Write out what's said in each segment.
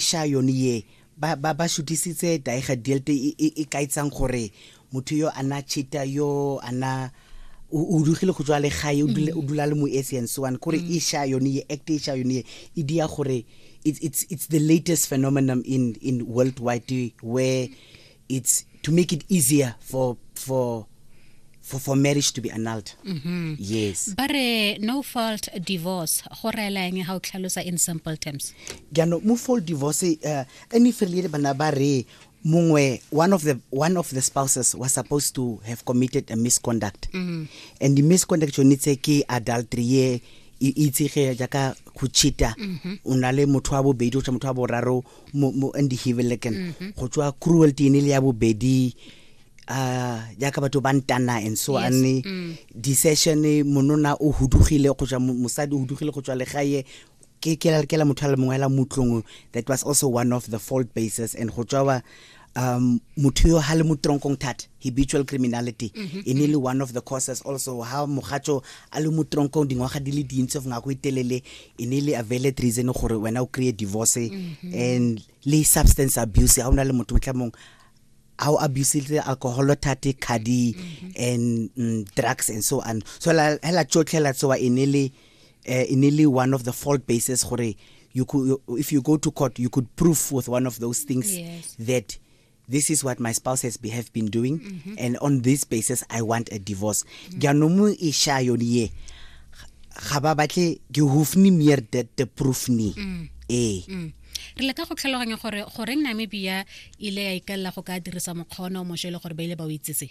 Sha yone ye, ba, ba, ba šutisitse Daiga Dielt e, e, e kaetsang gore motho yo a na chita yo a na o o dugile go tswa le gae o dula o dula le moetsi and so on kore e sha yone ye act e sha yone ye e dia gore it's it's it's the latest phenomenon in in worldwide where it's to make it easier for for for, for marriage to be annulled mm -hmm. yes but uh, no fault divorce go rela eng ga o tlhalosa in simple terms jaanong mo fault divorce uh, any failure bana ba re mongwe one of the one of the spouses was supposed to have committed a misconduct mm -hmm. and the misconduct yone tse ke adultery ye e itsege jaaka go cheata mm-hmm. o na le motho wa bobedi o tsa motho wa boraro mo mo in the Hivelekan mm -hmm. go tswa cruelty ene le ya bobedi uh jaaka batho ba ntana and so yes. ane mm. decision monona o hudugile go tswa mosadi o hudugile go tswa legae ke ke la motho a le mongwe la mutlong that was also one of the fault bases and go tswa um motho yo ha le motronkong thata habitual criminality mm -hmm. e ne le one of the causes also ha mogatso a le motronkong dingwaga di le dintsi of ngako itelele e ne le availed reason gore wena o create divorce mm -hmm. and le substance abuse ha ona le motho motlamong a o abusile alcohol thate khadi mm -hmm. and mm, drugs and so on so la hela tsotlhela tsoa e ne le uh, in nearly one of the fault bases gore you could you, if you go to court you could prove with one of those things yes. that this is what my spouse has be, have been doing mm -hmm. and on this basis i want a divorce mm-hmm. jaanong mm. e sha yone ye ga ba batle ke hofni meer that the proof ni mm. ee mm. re leka go tlhaloganya gore goreng namibia ile ya ikalela go ka dirisa mokgwa ona o mošwa e le gore ba ile ba o itsetse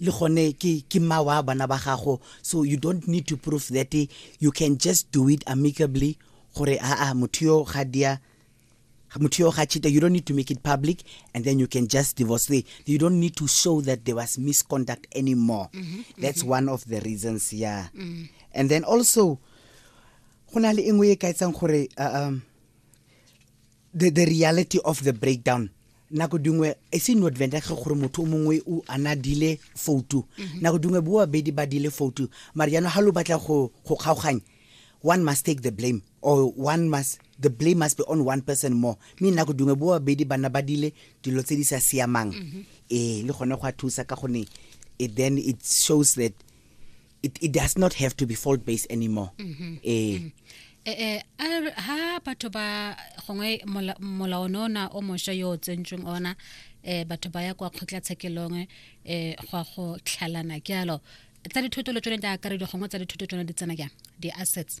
le gone ke ke mma wa bana ba gago so you don't need to prove that you can just do it amicably gore aa motho yo ga dia motho yo ga cheater you don't need to make it public and then you can just divorce the you don't need to show that there was misconduct anymore mm -hmm, that's mm -hmm. one of the reasons yeah mm -hmm. and then also go na le engwe e ka etsang gore uh, um the, the reality of the breakdown nako dingwe e se no adventa ge gore motho o mongwe o ana dile foutu mhm. nako dingwe bo babedi ba dile foutu mare jaanong ga lo batla go kgaoganya one must take the blame or one must the blame must be on one person more mme nako dingwe bo babedi bana ba dile dilo tse di sa siamang mhm. ee le gone go a thusa ka gone it then it shows that it, it does not have to be fault based anymore mm-hmm. eh mm-hmm. eh eh ha batho ba gongwe molao no na o mosha yo o tsentsweng ona eh batho ba ya kwa khotla tshekelong eh go go tlhalana ke alo tsa dithoto le tsone di akaredi gongwe tsa dithoto tsone di tsena jang di-assets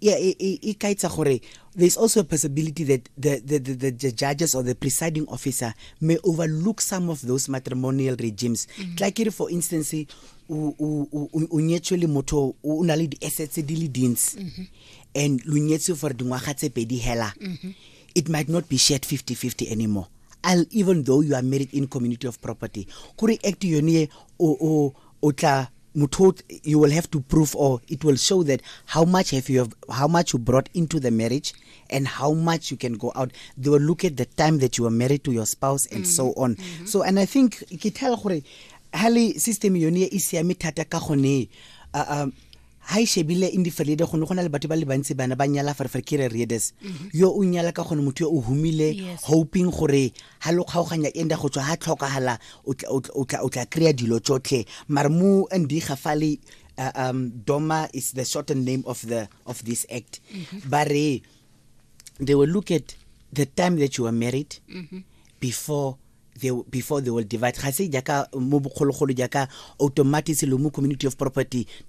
yeah, it, it, it guides gore there's also a possibility that the, the, the, the, judges or the presiding officer may overlook some of those matrimonial regimes. Mm -hmm. Like, for instance, o nyetswe le motho o na le di-assets di le dintsi mm-hmm. and lo nyetswe for dingwaga tse pedi hela mm-hmm. it might not be shared 50-50 anymore I'll, even though you are married in community of property kore act yone o tla motho you will have to prove or it will show that how much have you have, how much you brought into the marriage and how much you can go out they will look at the time that you were married to your spouse and mm -hmm. so mm-hmm. on mm -hmm. so and i think ke tell gore ha le system yone e siame thata ka gone uh, um, ha e shebile in diferede gone go na le batho ba le bantsi bana ba nyala ferfer kere readers mm-hmm. yo o nyala ka gone motho yo o humile hoping gore ha lo kgaoganya enda go tswa ha tlhokagala o tla kry-a dilo tsotlhe mare mo ndiga fa le uh, um, doma is the shortened name of the of this act mm -hmm. ba re they will look at the time that you were married mm -hmm. before they, before they will divide ga se jaaka mo bogologolo jaaka automatic le mo community of property